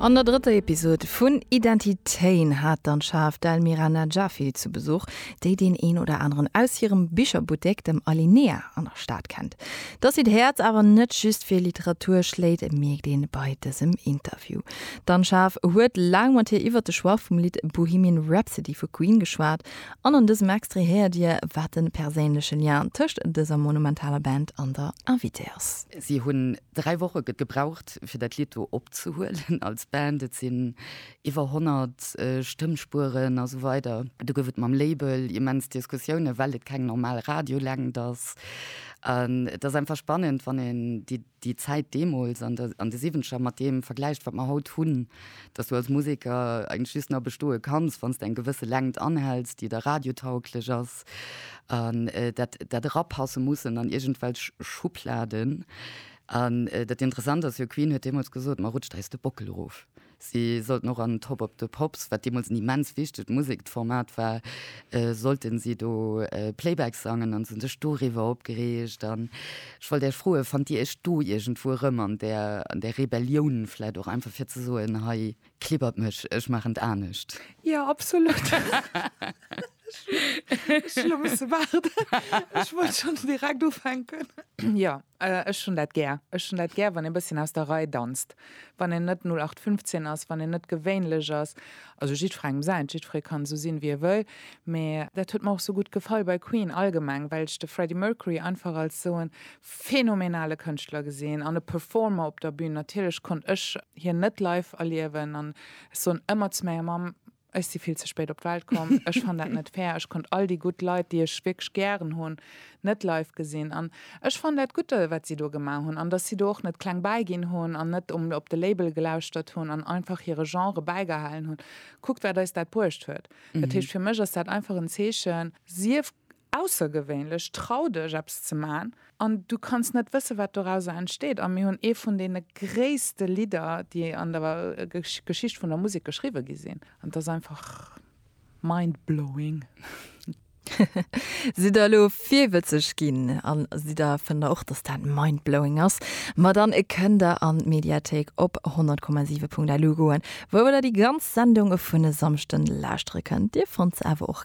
An der drëtter Episod vun Identitéen hat d'Anschaaf d'Elmira Najafi zu Besuch, déi deen een oder aneren aus hirem Bicherbuttek, dem Alinea, an der Stad kennt. Dass si d'Häerz awer net just fir Literatur schléit, mierkt een bei dësem Interview. D'Anschaaf huet laang mat hir iwwert de Choix vum Lidd Bohemian Rhapsody vu Queen geschwat. An an dësem Extrait héiert dir, wat de perséinleche Lien tëscht dëser monumentaler Band an der Invitée ass. Si hunn Dräi Woche gëtt gebraucht, fir dat Lidd do opzehuelen als Band. Et sinn iwwer 100 Stëmmspueren a sou weider. Do gouf et mam Label immens Diskussiounen, well et keng normal Radiolängt ass. An et ass einfach spannend, wann een déi Zäit deemools an de Siwwenzeger mat deem vergläicht, wat mer haut hunn, dass du als Museker eigentlech just nach bestoe kanns, wann s de eng gewësse Längt anhäls, déi da radiotauglech ass. passt an dat dat erapasse mussen an irgendwelch Schubladen an dat interessant ass jo Queen huet deemools gesot ma rutscht eis de Bockel erof. Si sollten och an Top Of The Pops, wat deemools en immens wichtegt Musekformat war, sollten si do Playback sangen an se hunn sech doriwwer opgereegt an ech wollt Iech froen, fannt Dir Iech do iergendwou erëm an där an där Rebellioun vläicht och einfach fir ze soen hei Klibbert mech, ech maachen et anescht. Ja, absolut. Ech elo musse waarden. Ech wollt schonns direkt ufänken. Jo, ech hunn dat gär. Ech hunn dat gär, wann ee bësschen aus der Rei danzt, wann een net 0815 ass, wann een net gewéinlech ass. Also jiddwerengem säint, jiddweree kann esou sinn, wéi e wëll. Mee dat huet mer och esou gutt gefall bei Queen allgemeng, well ech de Freddie Mercury einfach als esou e phänomenale Kënschtler gesinn an e Performer op der Bühn. Natierlech konnt ech hien net live erliewen an ech soen ëmmer zu menger Mamm, ech si vill ze spéit op d'Welt komm, ech fann dat net fair, ech konnt all déi gutt Leit, déi ech wierklech gären hunn, net live gesinn. An ech fann dat gutt, wat si do gemaach hunn an dass si do och net kleng bäiginn hunn an net op de Label gelauschtert hunn an einfach hire Genre bäigehalen hunn. Kuckt, wat eis dat bruecht huet. Dat heescht, fir mech ass dat einfach en Zeechen, sief Aussergewéinlech, trau dech eppes ze man an du kanns net wësse wat dorauser entsteet. A mir hunn ee vun deene gréisste Lidder déi an der Geschicht vun der Musek geschriwwe gi sinn. An et ass einfach mindblowing. Sidd der elo virwëtzeg ginn a si der fënnt der och dass dat mindblowing ass? Ma dann kënnt der an d'Mediathéik op 100,7.lu goen wou der déi ganz Sendung vun e Samschden lauschtere kënnt. Dir fannt se awer och.